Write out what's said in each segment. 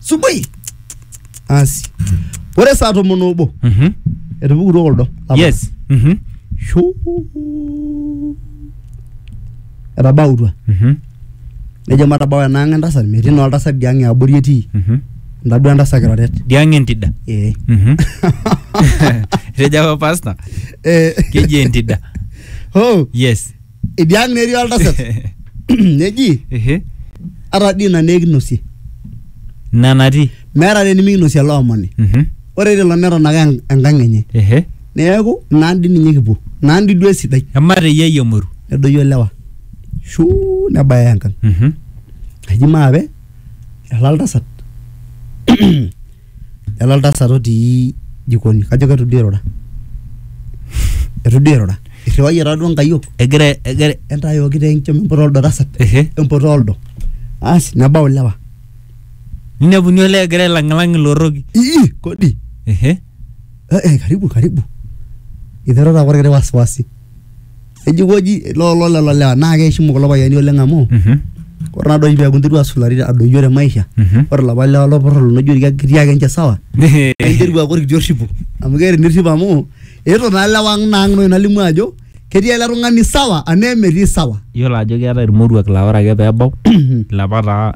subuhi asi ore saa tomon obo Mhm. etupukutuo kuldo apa. yes Mhm. Shuu. etabautua Mhm. nejo matabau enaang entasat metii naa oltasat diang eabori etii Mhm. ntadua entasat kiroret diang entida ee Mhm. etejo apa pasta Eh, keji entida oh yes Idia ang' netii oltasat neji Ehe. ata dii ina naa ekinosie Ina natii. meeta dii nimikinosie ele omoni Mhm. ore tilo neton ake en- enkang' enye Ehe. neeku naa dii ninye kipuo naa dii duo esidai Emata eyiai emoru. nedoyio ilewa shuu nebaya enkang' Mhm. eji maape ela oltasat Lele oltasat otii jikoni. Kajo keitu duo eirura. Eitu duo eirura. Eirriwayie taa duo nkayiok. Egira egira. Entayooki taa enkiom emputa oldo tasat. Emputa oldo. Asi nebau ilewa. Neinepuni olee egira ailang'ilang ilorroki. Ii kodi. Ehe. Karibu karibu. Eiterua taake olkiti wasiwasi. ejikoji lolo lelo lewa naa keishimu kulo payiani oleng amu Mhm. ore naa doi peeku interua asulari adoyio te maisha Mhm. ore lapa lewa lopurrol loijo irkia kitii ake ninche sawa interua aaku orkiti orripo amu keeta enirrip amu eetuo naa lewa ang naa ang nai nalimu ajo ketii ele tung'ani sawa anaa emetii sawa Iyiolo ajo keetae irmoruak laa ore ake pee ebau ilapa taa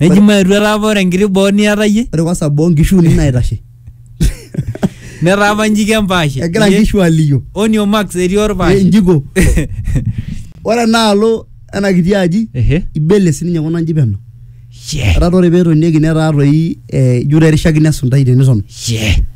Neji maetu etaa apa ore enkiti boo niata iyie ore kwanza boo nkishu uni naitashe netaa apa njiki empaashe. egira Iyie, nkishu aliyo Onio Max etii Eh, orpaashe. njiko ore enaalo ena kiti aji Ehe. ibele sininye kuna nji peno Shee. etaa ore peetonieki netaa toi eh, ijo erishakino esuntai teniton Shee.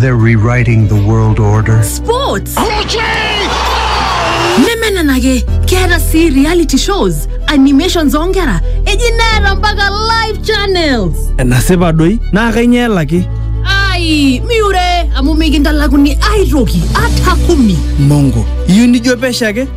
They're rewriting the world order. Sports. nemenenake keeta sii reality shows animations oonkera eji neeta mpaka live channels enasipa doi naa kainyoo elaki ai miure amu mikintalakuni aitoki ata kumi mongo iyieu nijo pesho ake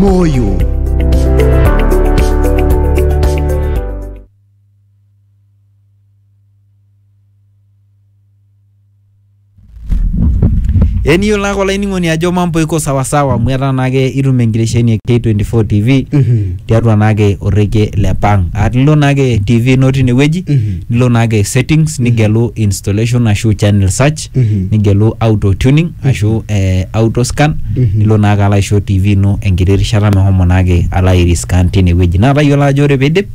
moyo eniyiolo ake olainining'oni ajo mambo iko sawasawa amu etaa naake itum enkiresheni e K24 TV Mhm. tiatua naake orrekie le pang aa nilo naake TV ino tinewueji Mhm. nilo naake settings nigelu installation ashu channel search test nigelu auto tuning ashu eh, auto scan nilo naake alo aisho tv ino enkiti rishata mehomo naake alo airiscan tinewueji naa tayiolo ajo ore piidip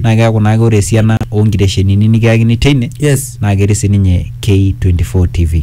naa keeku naake ore esiana onkiteshenini nikiyakini teine yes naa ketii sininye K24 TV.